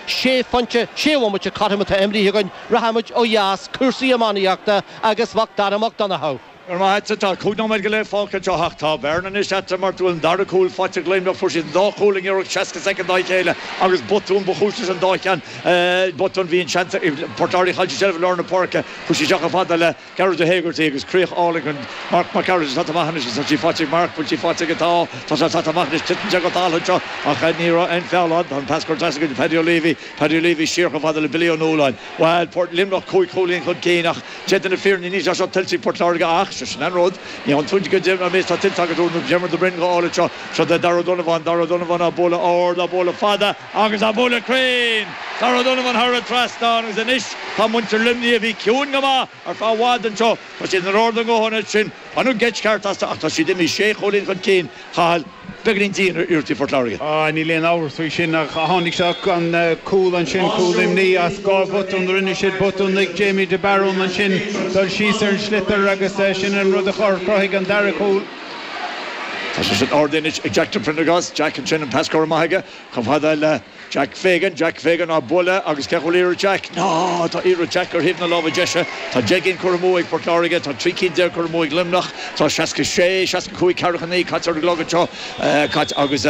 sé phointe, sé bhomaite cothrom ama atá imrithe againn, rachaimid ó dheas, cúrsaí iománaíochta agus Mac Dara Mac Donncha. Go raibh maith agat, tá cúig nóiméad go leith fágtha anseo ach tá bearna anois eatarthu mar go bhfuil an dara cúl faighte ag Luimneach. Fuair siad an dá chúl i ngiorracht 60 soicind dá chéile agus botún ba chúis leis an dá cheann, botún a bhí an seans ag Port Láirge cailleadh seilbh lár na páirce. Chuaigh sí isteach chomh fada le. Gearóid Ó hÉigeartaigh agus críoch álainn chun Marc Mac Gearailt atá maith anois is an sí faighte ag Marc bhuel sí faighte aige tá tá sé tá maith anois titeann sé go dall anseo ach ní raibh aon feall ann tá an pas curtha as againn do Paddy O'Leary Paddy O'Leary siar chomh fada le Billy Ó Nualláin bhuel Port Luimneach cúig chúilín chun cinn ach déanta na fírinne níl sé seo tuillte ag Port Láirge ach sé sin an rud ní fhaigheann tú i gcónaí an rud atá tuillte agat Diarmaid Ó Broin go áirid seo seo Darragh Ó Donnabháin Darragh Ó Donnabháin á bualadh ard á bualadh fada Agus á bualadh cruinn! Tá Darragh ard os cionn an trasnáin agus anois tá muintir Luimnigh, a bhí ciúin go maith ar feadh i bhfad anseo, tá siad in airde go hard ansin. Baineadh geit cheart astu ach tá siad imithe sé chúilín chun cinn, Cathal, beagainín dian ar iarrachtaí Phort Láirge. Á, níl aon amhras faoi sin ach tháinig seo, an cúl ansin, cúl Luimnigh as dhá bhotún, rinne siad botún, lig Jamie de Barún ansin dul síos ar an sliotar agus sin an rud a chruthaigh an dara cúl. Tá sé sin in airde anois ag Jack de Priondargás, Jack ansin, an pas curtha amach aige, Chomh fada le Jack Fagan, Jack Fagan á bualadh agus cá bhfuil iarracht Jack, no, tá iarracht Jack ar thaobh na láimhe deise, tá deich gcinn curtha amú ag Port Láirge, tá trí cinn déag curtha amú ag Luimneach, tá seasca sé, seasca cúig, ceathracha naoi caite ar an gclog anseo, caite agus,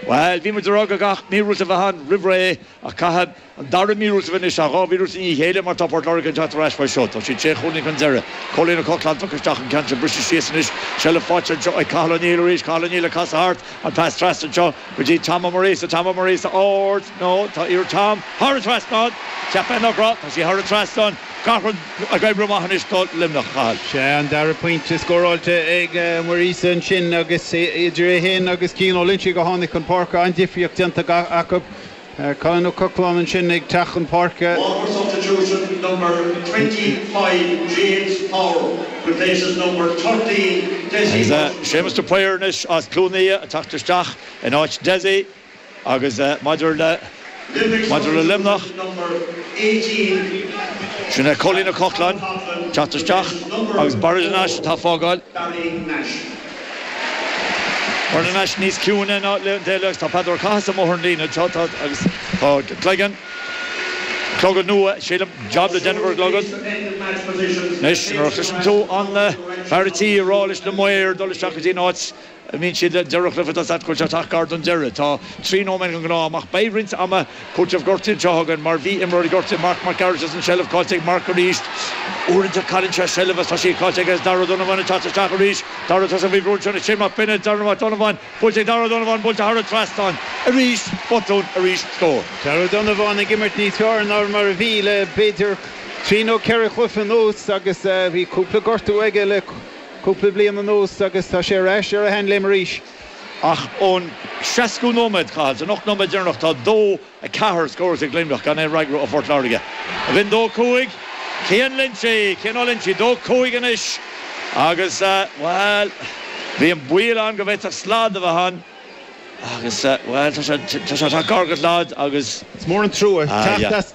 bhuel, bhí muid a' rá go mba míorúilt a bheadh ann roimh ré a Chathail. An dara míorúilt anois, dhá mhíorúilt i ndiaidh a chéile má tá Port Láirge ag teacht ar ais faoi seo. Tá siad sé chúilín chun deiridh. Cóilín Ó Cochláin tagtha isteach, an ceann seo briste síos anois. Seilbh faighte anseo ag Cathal O'Neill arís. Cathal O'Neill ag casadh thart. An pas trasna anseo go dtí Tom Ó Muiríosa. Tom Ó Muiríosa ard. No. Tá iarracht Tom. Thar an trasnán. Ceapadh inniu Tom. Tá sí thar an trasnán. Gach rud ag oibriú amach anois do Luimneach, Cathal. Sea, an dara pointe scóráilte ag Muiríosa ansin agus idir é féin agus Cian Ó Loingsigh ó tháinig chun páirce. An-difríocht déanta acu. Colin Ó Cochláin ansin ag teacht chun páirce. Waterford substitution number twenty five James Power replaces number thirteen Dessie Is é Séamus de Paor anois as Cluain Aodha ag teacht isteach in áit Dessie agus maidir le Limerick maidir le substitution Luimneach number eighteen sin é Cóilín Ó Cochláin ag teacht isteach agus Barry Nash atá ag fágáil. Barry Nash. Barry Nash níos ciúine ná le déanaí agus tá Peadar Ó Cathasaigh amuigh ar an líne anseo tá agus tá cloigeann, clogad nua sílim, jab le déanamh ar an gclogad. Anois nuair a chloiseann tú an fear an tí ag rá leis na maoir dul isteach go dtí an áit a mbíonn siad le deireadh cluiche tá a fhios agat go bhfuil sé ag teacht gar don deireadh tá trí nóiméad den ghnáth-am ach beidh roinnt ama Cúpla am gortaithe anseo againn mar bhí imreoir gortaithe, Marc Mac Gearailt, as an seilbh. Caillte ag Marc arís. Uaireanta cailleann sé seilbh is tá sí caillte aige is Daragh Ó Donnabháin ag teacht isteach arís. Daragh tá sé faoi bhrú Shane Mac Bionaid. Daragh Mac Donnabháin. Buailte ag Daragh Ó Donnabháin. Buailte thar an trasnán. Arís. Botún. Arís. Scór. Daragh Ó Donnabháin ag imirt níos fearr ná mar a bhí le b'fhéidir trí nó ceithre chluiche anuas agus bhí cúpla gortú aige le cúpla bliain anuas agus tá sé ar ais ar a shean-léim arís. Ach ón seascú nóiméad, Cathal, san ocht nóiméad deireanach tá dó a ceathair scóráilte ag Luimneach gan aon fhreagra ó Phort Láirge. Bhí an dó a cúig. Cian Ó Loinsigh! Cian Ó Loinsigh dó a cúig anois agus, bhuel, bhí an baol ann go bhféadfadh slad a bheith ann agus, bhuel, tá sé, tá sé, tá gar go slad agus. Is mór an trua teacht as.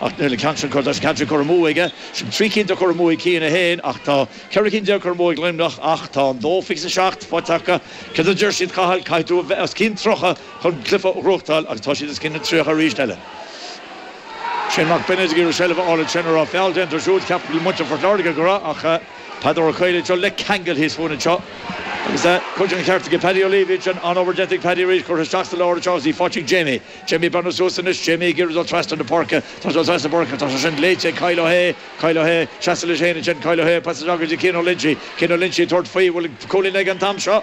Ach níl an ceann sin curtha, tá an ceann sin curtha amú aige. Sin trí cinn atá curtha amú ag Cian é féin ach tá ceithre cinn déag curtha amú ag Luimneach ach tá an dó fiche is seacht faighte acu. Cad a deir siad, Cathal? Caithfidh tú a bheith os cionn tríocha chun cluiche a bhuachtáil agus tá siad os cionn na tríocha arís eile. Shane Mac Bionaid ag iarraidh seilbh a fháil ansin a raibh feall déanta air siúd. Ceapann muintir Phort Láirge go raibh ach Peadar Ó Cathasaigh anseo le ceangal thíos fúinn anseo agus cuid den cheart aige. Paddy O'Leary ansin, an-obair déanta ag Paddy arís, curtha isteach sa lár anseo agus í faighte ag Jamie. Jamie Barron suas anois, Jamie, ag iarraidh dul trasna na páirce. Tá sé ag dul trasna na páirce, tá sé sin léite ag Kyle Ó hAodha, Kyle Ó hAodha, seasamh leis féin ansin, Kyle Ó hAodha, pas isteach go dtí Cian Ó Loinsí, Cian Ó Loinsí, tabhairt faoi, bhfuil cúilín aige an t-am seo?